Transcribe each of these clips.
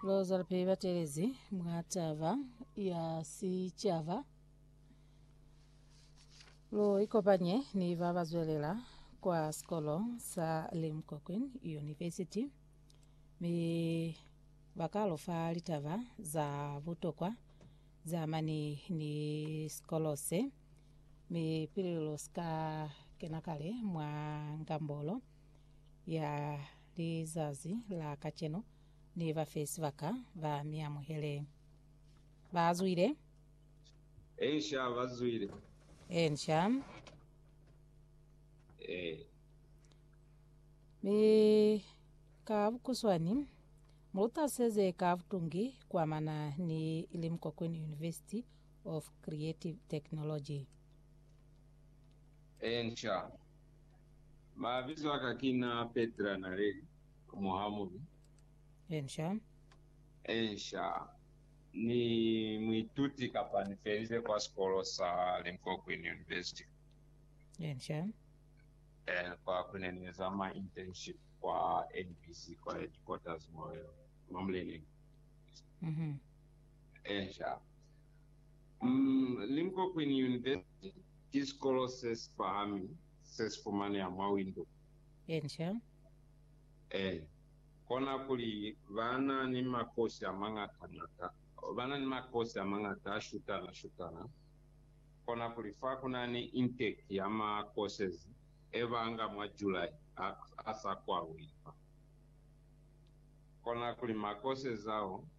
Loza lipeli batelezi mwa taba ya sicaba lu ikopanye ni ba ba zwelela kwa sikolo sa Limkokwin University mi ba ka lu fa litaba za butokwa ze amani ni sikolo se mi pili lu si ka kena kale mwa ngambolo ya Lizazi la kacenu, ni ba fe sibaka ba mi amuhele. Ba zwile. Eensha, ba zwile. Eensha. Ee. Mi ka bukuswani, mu lutaseze ka butungi kuamana ni Limkokwini University of Creative Technology. Eensha. Mabizo aka kina Petra Naleli, muhamubi. Ensha. Ensha, Ni muituti kapa ni felize kwa sikolo sa Linkokwini University. Ensha. Eh, kwa kune ni eza ma internship kwa NBC kwa headquarters mo Mamleneng. Mhm. Ensha, Limpopo Queen University ki sikolo se si pahami se si fumaneha mwa Windhoek. Asia. Ee, kona kuli ba na ni makosi a mañata-ñata, ba na ni makosi a mañata a shutana-shutana. Kona kuli fa ku na ni intake ya ma courses e ba nga mwa July a, a sa kwalwi fa. Kona kuli ma courses ao,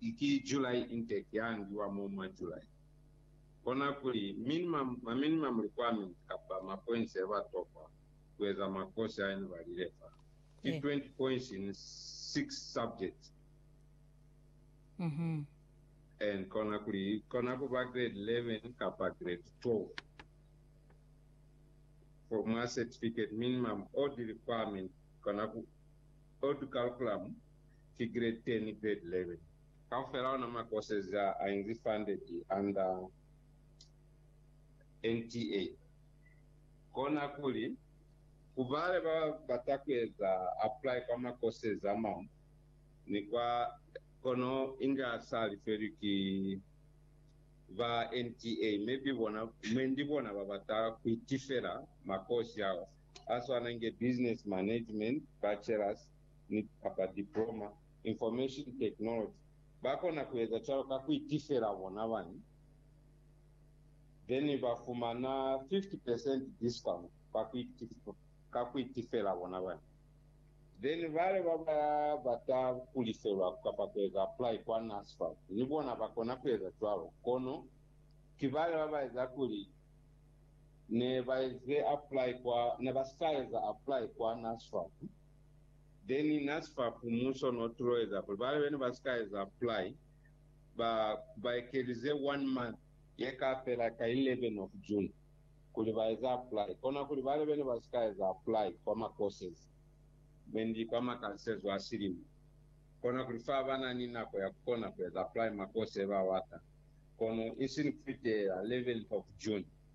I ki July intake ya ngiwa mo mwa July. Kona kuli minimum, ma minimum requirement kapa ma points ya ba tokwa ku eza mwa course a ene ba lile fa, ki 20 points in 6 subjects. And kona kuli i kona ku ba grade 11 kapa grade 12. For mwa certificate minimum odd requirement kona ku, odd curriculum ki grade 10 grade 11. Kaufela ona ma courses a a inzi funded under NTA. Kona kuli, ku bale ba bata ku eza apply kwa ma courses a mañwi ni kwa, kono inga sa lifelwi ki ba NTA, maybe bona, mwendi bona ba bata ku itifela ma course ao a swana inge Business Management, Bachelors, ni kapa diploma information technology ba kona ku eza cwalo ka ku itifela bona bani then ba fumana 50 percent discount ka ku itifela ka ku itifela bona bani then bale ba ba bata ku lifelwa kapa ku eza apply kwa NSFAS ni bona ba kona ku eza cwalo kono ki bale ba ba eza kuli ne ba eze apply kwa ne ba sa eza apply kwa NSFAS Then nasifap muso no tuloeza kuli bale bene basika eza apply ba ba ekelize one month yeka fela ka 11 of June kuli ba eza apply kona kuli bale bene basika eza apply kwa ma courses mendi kwa makalisezo a silimo kona kuli fa bana ni nako ya kukona kueza apply ma course yeba bata kono isini kufitela 11th of June.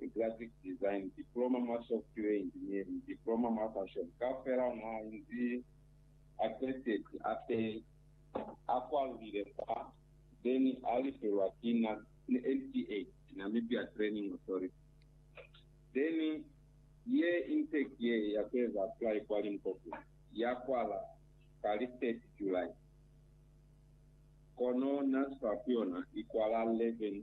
ni Graphic Design, Diploma mwa Software Engineering, Diploma mwa Fashion, kaufela mwa inzi a qetezi ape a kwalulile fa ze ni a lifelwa ki NTA, Namibia Training Authority. Then ye intake ye ya kueza apply kwa Limpopo ya kwala ka li 30 July, kono NASFAR ku yona i kwala 11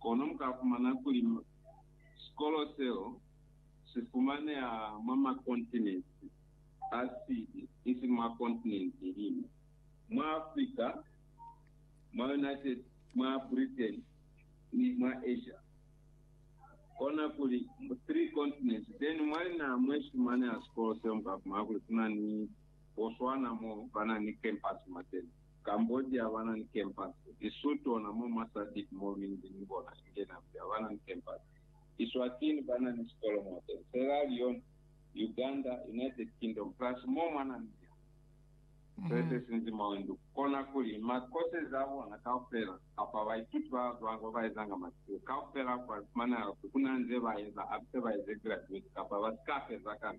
Kono mukafumana kuli sikolo seo sifumaneha mwa makontinenti asili isiñi mwa kontinenti liñwi, mwa Africa, mwa United, mwa Britain, ni mwa Asia. Kona kuli mu three continents teni mwa linaha mwesifumaneha sikolo seo mukafumana kuli kuna ni Botswana mo banani campus mwateni. Cambodia habana ni kempasi. Lesotho ona mo mwa SADC mo minzi ni bona inge Namibia habana ni kempasi. Eswatini bana ni sikolo mwa tena. Sierra Leone, Uganda, United Kingdom plus mo mwa Namibia. Se se sinzi mwa wendu kona kuli makosezi a bona kaufela kapa baituti ba bazwanga ba ba ezanga masiko kaufela kwa li fumaneha ku kuna nze ba eza abse ba eze graduate kapa ba si ka feza kana.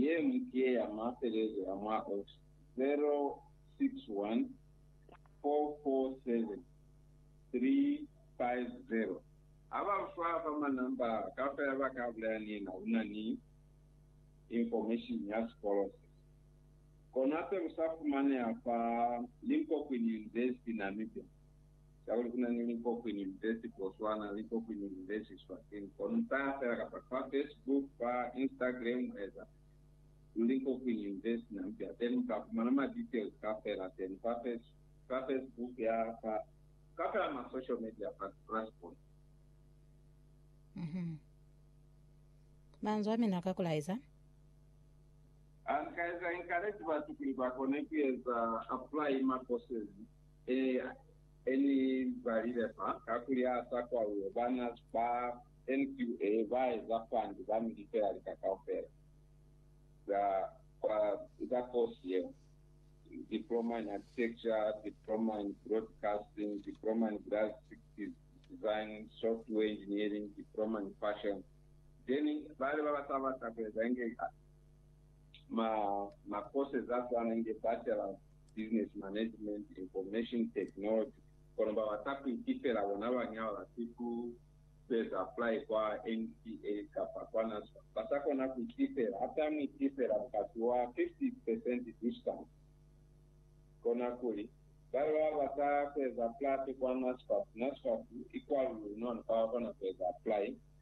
Ye ñwi ki ye ya mafelelezo ya mwa Oct. 061 447 350. Ha ba lu fa fa ma namba kaufela ba ka bulaya ni na lu na ni information ya sikolo se. Kona se lu sa fumaneha fa linkokwini nze si Namibia. Ka kuli kuna ni likokwini lipesi Botswana, likokwini lilezi Eswatini. Kono nta fela kapa fa Facebook, fa Instagram eza lu likokwini lipesi Namibia. Teni muka fumana ma details ka fela teni fa Facebook ya fa ka fela ma social media fa Grasspoint. Mhm. Manzwi amina ka kulaeza. Ha ni ka eza encourage batu kuli ba kone ku eza apply ma courses. Eya, e ni balile fa, kakuli ha sa kwauwe, bana ba NQA ba eza fandi ba mi lifela lika kaufela za kwa za kosi yeo, Diploma in Architecture, Diploma in Broadcasting, Diploma in Graphics Design, Software Engineering, Diploma in Fashion. Then bale ba ba sa bata ku eza inge ma, ma courses a swana inge Bachelors. Business Management, Information Technology, kono ba bata ku itifela bona bañi ha ba bati ku sueza apply kwa NCA kapa kwa NASFAT? Ba sa kona ku itifela. Ha ta mu itifela mukati wa 50 percent discount. Kona kuli, Ba ba bata kueza apply kwa NASFAT, NASFAT i kwalulula noni ba kona kueza apply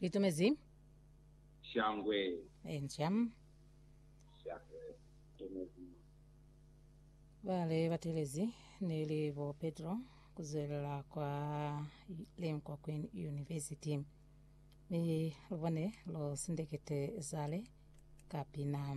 Litumezi. Shangwe. Enca. Shangwe. Litumezi. Bale batelezi neli bo Petro kuzwelela kwa Lenkwa Queen University. Mi lubone lo sindekete zale ka pina.